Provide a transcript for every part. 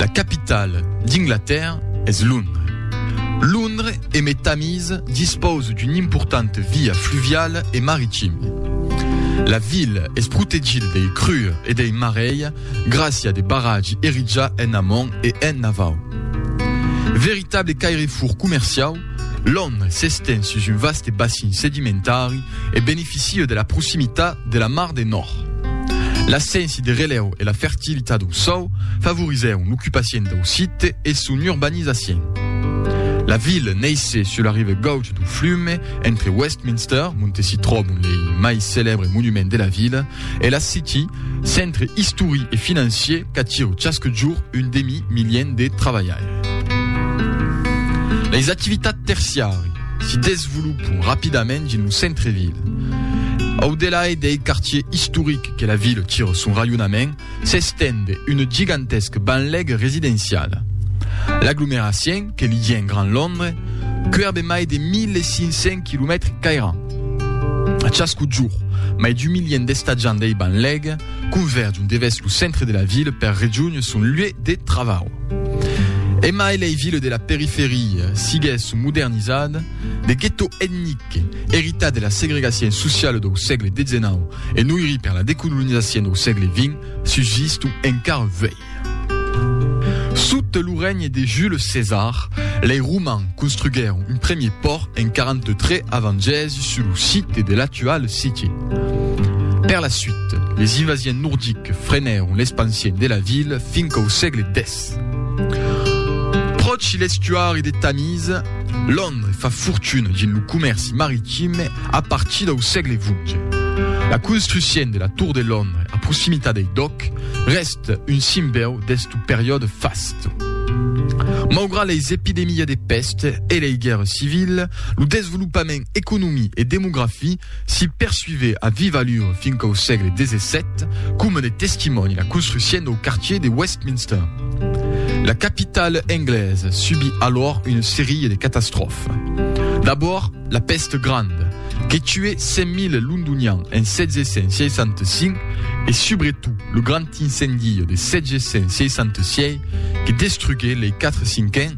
La capitale d'Inglatèrra es Londres. Londres e me Tamise dispause d'une importante via fluviale e maritime. La ville es protegida dei crue e dei marei gràcia de barratge eritjà en amont e en avau. Veritable cairefur comerciau, L'On s'estend sus un vaste bacin sedimentari e beneficia de la proximitat de la Mar de Nòrd. L'assenci de relèu e la fertilitat dau sòu favorizèron l'ocupacien dau site e son urbanizacien. La vila neisse sus la riba gaucha dau flume, entre Westminster, monte s'i tròbon lei mai celèbre monuments de la vila, E la City, centre istori e financier qu'atiro chasque jour un demi milien de trabalhaires. Leis activitats terciari si desvolopon rapidament dins lo centre-ville. Au delai dei quartier istoric que la ville tire son rayonament, s'estende un gigantesc banlègue residenciala. L'aglomeracion que li dien Grand Londre quer de mai de 1.500 quilomètres cairàn. A chascu jorn, mai d'un milien d'estatjants dei banlègue converjon devès lo centre de la ville per rejónher son luè de travau. Emai lei ville de la periferia siguèsson modernizad, de guetò etnic, Eritat de la segregacion sociala dau sègle xix e noiri per la decolonizacion dau sègle xx, subsist encara uèi. Sota lo regne de Jules Cèsar, lei Romans construguèron un premier pòrt en 43 avant Jèsus sus lo site de l'actual Siquie. Per la suite, les invasions nordiques frenèron l'expansion de la vila fin qu'au sègle xix. Pròchi l'estuari de Tamise, Londres fa fortuna dins lo comèrci maritime a partir dau sègle xvi. La construccion de la Tour de Londres a proximitat dei Dock rèst un simbèu d'estu periòde fast. Maugrat leis epidemias de pèst e lei guèrras civils, lo desvolopament economi e demografi, S'i persuivè a viva lur fin qu'au sègle xvii, coma ne testimòni la construccion dau quartier de Westminster. La capitala englesa subí alhors una seria de catastròfas. D'abòrd, la Pèste Granda, que tuè 100.000 Londonians en 1765 e subretot lo grand incendie de 1766 que destruguè lei quatre cinquens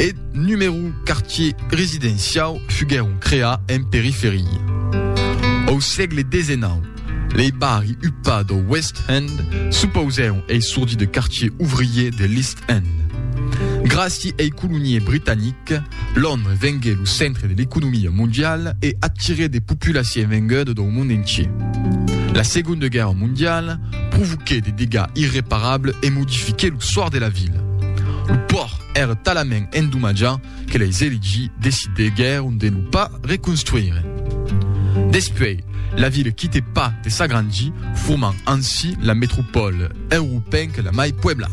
Eth numero quartier residenciau fuguèron crear en periferia. Au sègle desenau, lei barri upa dau West End supausèron ei sordi de quartier ouvrier de l'East End. Graci ei colonier britanic, Londres vengué lo centre de l'economia mondiala e attiré de populaciei venguda dau mond entier. La Segonda Guèrra Mondiala provoquè de degat irreparable e modifiquè lo soir de la vila. Lo pòrt èra talament endomatjat que leis eligi decidèguèron de lo pas reconstruire. Despuèi, la vila quitè pas de s'agrandir, formant ansi la metropòla europenca la mai pueblada.